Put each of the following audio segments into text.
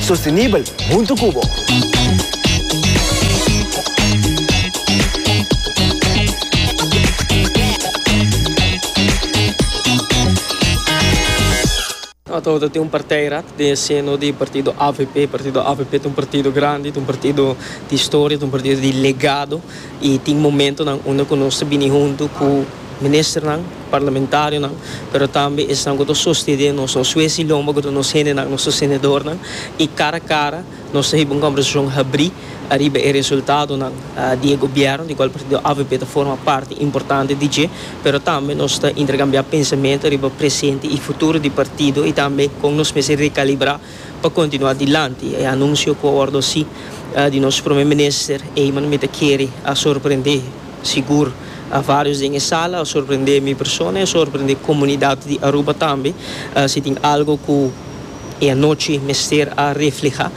Sostenibel huntu cu bo. Ata awo ta tin un partijrat den e seno di partido avp. Partido avp ta un partido grandi, ta un partido di historia, ta un partido di legado. I tin momentonan unda ku nos ta bini huntu ku ministernan, parlamentarionan, pero tambe esnan ku ta sostene nos, nos wes di lomba ku ta nos hendenan, nos sostenedornan, i kara kara nos ta hiba un kombersashon habrí ariba e resultadonan di e gobièrnu, di kual partido avp ta forma parti importante di dje, pero tambe nos ta interkambiá pensamentu ariba presente i futuro di partido i tambe kon nos mester rekalibrá pa kontinuá dilanti, e anunsio ku a wòrdu hasi di nos promé minister ei manda mi ta kere a sorprendé sigur a vários den e sala, a sorprendé mi persona i a sorprendé komunidat di Aruba tambe. Si tin algu ku e anochi mester a reflehá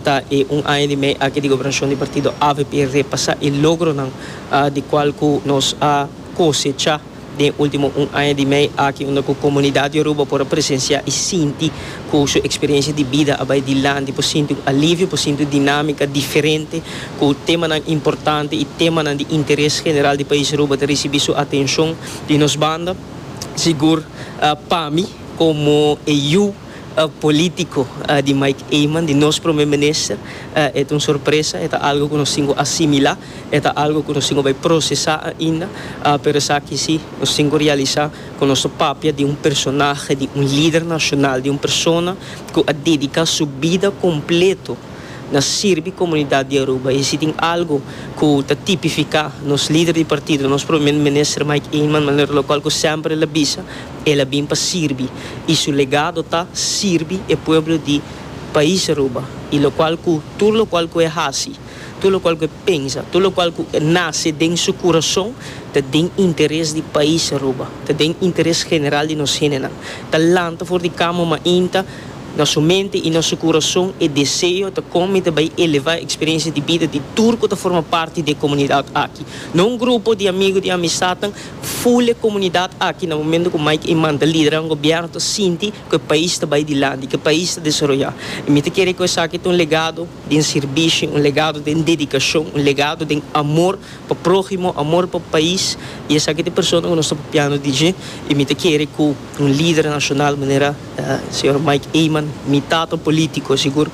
ta e un aña di mei aki di gobernashon di partido avp repasá e logronan di kual ku nos a kosechá. Den ultimo un aña di mei aki unda ku komunidat Yoruba por a presensiá i sinti ku su eksperiensia di bida a bai dilanti, por sinti un alivio, por sinti un dinámika diferente, ku temanan importante i temanan di interes general di pais Aruba ta risibí su atenshon di nos banda. Sigur pa mi komo e yu polítiko di Mike Eman, di nos Prome Minister, e ta un sorpresa, e ta algu ku nos tin ku asimilá. E ta algo ku nos tin ku bai prosesá ainda, pero esaki si, nos tin ku realisá ku nos ta papia di un personahe, di un lider nashonal, di un persona ku a dediká su bida kompletu na sirbi komunidat di Aruba. I si tin algu ku ta tipifiká nos lider di partido, nos Prome Minister Mike Eman, manera lokual ku semper el a bisa, el a bin pa sirbi i su legado ta sirbi e pueblo di pais Aruba i lokual ku tur lokual ku e hasi. Tur lokual ku e pensa, tur lokual ku e nase den su kurason, ta den interes di pais Aruba, ta den interes general di nos hendenan. Ta lanta for di kama mainta na su mente i na su kurason e deseo ta kon mi ta bai elevá e eksperensia di bida di tur ku ta forma parti di e komunidat aki. No un grupo di amigu, di amistadnan, ful e komunidat aki na momentu ku Mike Eman ta liderá un gobièrnu ta sinti ku e pais ta bai dilanti, ku e pais ta desaroyá. I mi ta kere ku esaki ta un legado. den sirbishi, un legado den dedikashon, un legado den amor pa próhimo, amor pa pais, i esaki ta e persona ku nos ta papiando di dje, i mi ta kere ku un lider nashonal manera señor Mike Eman, mi tata polítiko sigur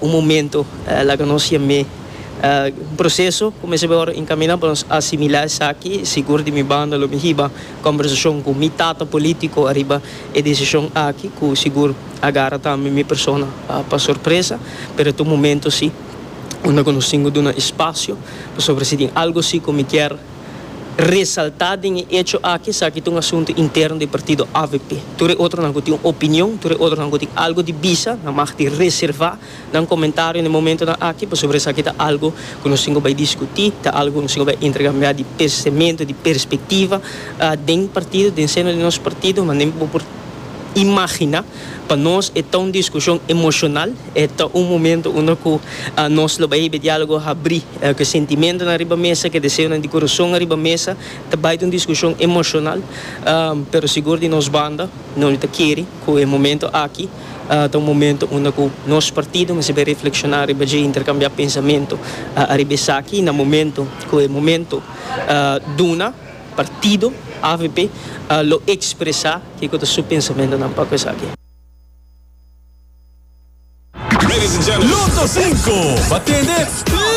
un momento laga nos yam'é un proseso kumins'é bai ora enkaminá pa nos asimilá esaki, sigur di mi banda lo mi hiba kòmbersashon ku mi tata polítiko ariba e desishon aki ku sigur. a gara tambe mi persona pa sorpresa, pero ta un momento si unda cu nos tin cu duna espacio, pasobra si tin algo si cu mi kier resalta den e hecho aki, esaki ta un asunto interno di partido avp. Tur e otronan cu tin un opinion, tur e otronan cu tin algo di bisa, nan mag di reserva. Nan komentario den momentonan aki pasobra esaki ta algu ku nos tin ku bai diskutí, ta algu ku nos tin ku bai interkambiá di pensementu, di perspektiva den partido, den seno di nos partido. Manera bo por imaginá, pa nos e ta un diskushon emoshonal, e ta un momentu unda ku nos lo bai hebe diálogo habrí, ku sentimentunan riba mesa, ku deseonan di kurason riba mesa. Ta bai ta un diskushon emoshonal, pero sigur di nos banda, nos no ta kere ku e momentu aki, Ta un momento unda cu nos partido mester bay reflexiona riba dje y intercambia pensamento ariba esaki. Na momento cu e momento duna, partido avp lo expresa kico ta su pensamentonan pa cu esaki. Lotocinco, Ba tende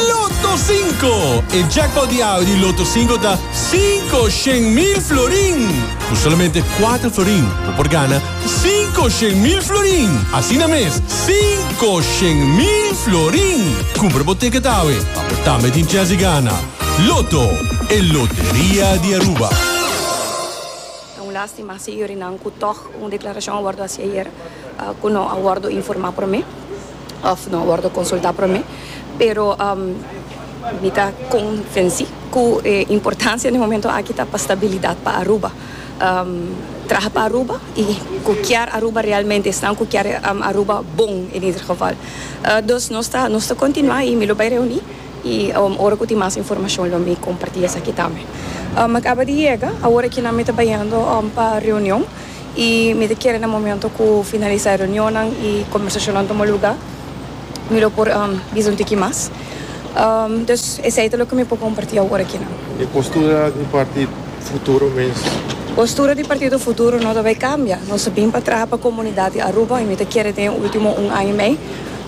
Lotocinco! E jackpot di awe di Lotocinco ta cinco shen mil florin. Cu solamente cuatro florin bo por gana. Cinco shen mil florin! Asina mes, cinco shen mil florin! Cumpra bo ticket awe pa bo tambe tin chance di gana. Lotto, e loteria di Aruba. Ta un lastima asi yurinan cu tog un declaracion a wordo haci ayer cu no a wordo informa prome of no a wordo consulta prome. Pero mi ta convenci cu e importancia den momento aki ta pa stabilidad pa Aruba. traha pa Aruba y cu kier Aruba realmente esnan cu kier Aruba bon en ieder geval. Dus nos ta nos ta continua y mi lo bay reuni y ora cu tin mas informacion lo mi comparti esaki tambe. Mi a caba di yega awor aki nan mi ta bayendo pa reunion y mi ta kere na momento cu finalisa e reunionnan y conversacionnan tuma lugar. Mi lo por bisa un tiki mas. Dus esei ta loke mi por kompartí awor akina. E postura di Partido Futuro mes? Postura di Partido Futuro no ta bai kambia. Nos a bin pa traha pa komunidat di Aruba i mi ta kere den e último un aña i mei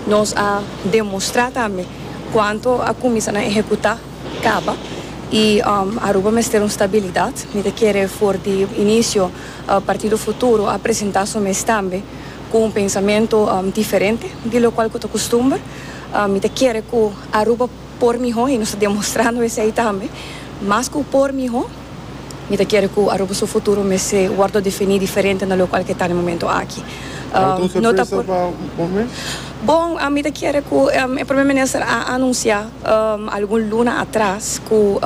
nos a demostrá tambe kuantu a kuminsá nan ehekutá kaba i Aruba mester un stabilidat. Mi ta kere for di inisio Partido Futuro a presentá su mes tambe. Cu un pensamento diferente di locual cu ta custumber. Mi ta kere cu Aruba por miho y nos ta demostrando esey tambe. Mas cu por miho, mi ta kere cu Aruba su futuro mester wordo defini diferente na locual cu e ta na e momento aki. No ta por. Bon, mi ta kere cu e Prome Minister a anuncia algun luna atras cu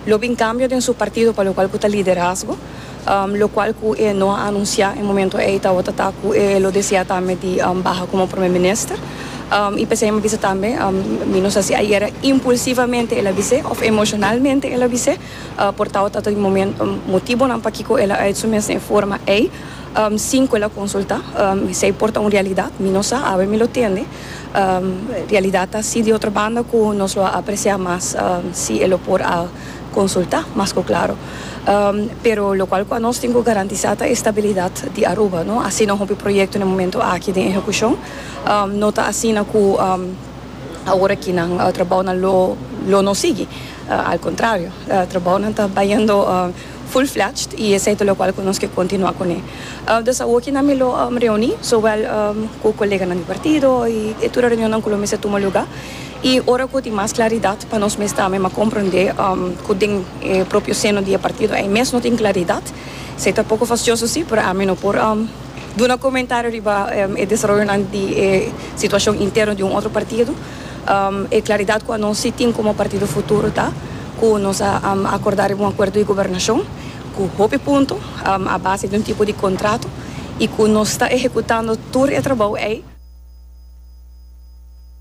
lo bin cambio den su partido pa locual cu ta Liderazgo. locual cu e no a anuncia e momento ey tawata ta cu e lo desea tambe di baha como Prome Minister y p'esey mi a bisa tambe mi no sa si ayera impulsivamente el a bis'e of emocionalmente el a bis'e por tawata ta di momento motibonan pakico el a ait su mes den e forma ey sin cu el a consulta esey por ta un realidad mi no sa awe mi lo tende realidad ta asi di otro banda cu nos lo a aprecia mas si e lo por a consulta mas cu claro. Pero locual cu anos tin cu garantisa ta e stabilidad di Aruba, no asina hopi proyecto n'e momento aki den ehecucion. No ta asina cu awor aki nan trabounan lo lo no sigui, al contrario trabounan ta bayendo full fledged y esey ta locual cu nos ke continua cu n'e. Dus awo aki nan mi lo reuni zowel cu coleganan di partido y e tur e reunionnan cu lo mester tuma lugar. I ora ku tin mas klaridat pa nos mes tambe m'a komprondé ku den e propio seno di e partido ei mes no tin klaridat. Esei ta poko fastioso si, pero ami no por duna komentario riba e desaroyonan di e situashon interno di un otro partido. E klaridat ku anos si tin komo Partido Futuro ta ku nos a akordá riba un akuerdo di gobernashon ku hopi punto a base di un tipo di kontrato i ku nos ta ehekutando tur e trabou ei.